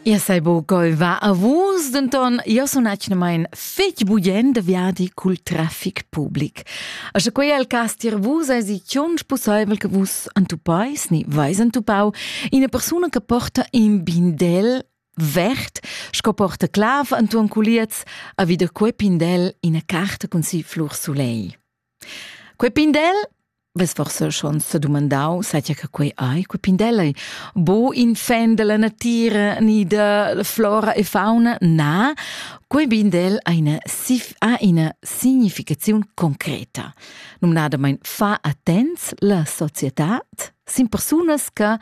Ia sei bo goiva a vus, denton io sun atgnamain fetg bugien de viadi cul traffic public. A sche quei al cas tier vus esi tschonch pusseivel che vus entupais ni vais entupau ina persuna che porta in bindel vert, sco porta clav entuon culiez, a vida quei pindel ina carta cun si flur sulei. Quei pindel vess forsa schon sedumandau satga che quei ei, quei pindel ei bo in fan dalla natira ni da flora e fauna. Na, quei pindel ha ina, ha ina significaziun concreta. Numnadamein fa attents la societad sin persunas che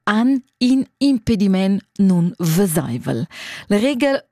han in impediment nun vesaivel. La regel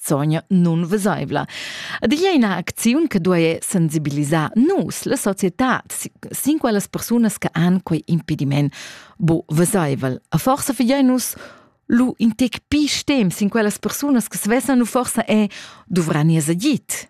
sogna nunvesaivla. Ed igl è ina acziun che duai sensibilisar nus, la società, sin quellas persunas che han quei impediment bo vesaivel. A forsa figiai nus lu in tec pi stem sin quellas persunas che svesan u forsa è duvran ir agit.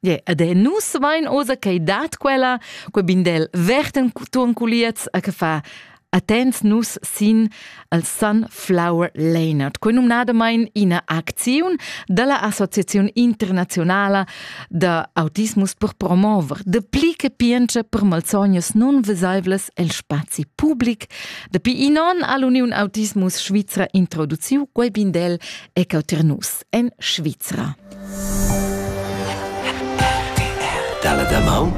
Yeah, ed e nus vain oza ch'ei dat quella, quei bindel verten turn culiez a che fa attents nus sin al Sunflower Leonard, quei numnadamain ina acziun dalla Associazione Internazionala da Autismus per promover de pli che pience per malsognas non vesaivles el spazi public. Dapi inon all'Union Autismus Svizra introduciu quei bindel ecoternus. en Svizra. Dalla damaun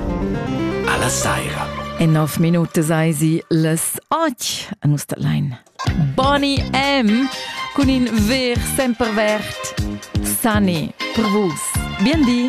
alla saira. En nov minute sei sie les och a nus da Lein. Bonnie M. cun in ver sempervert Sunny per vus. Bien di!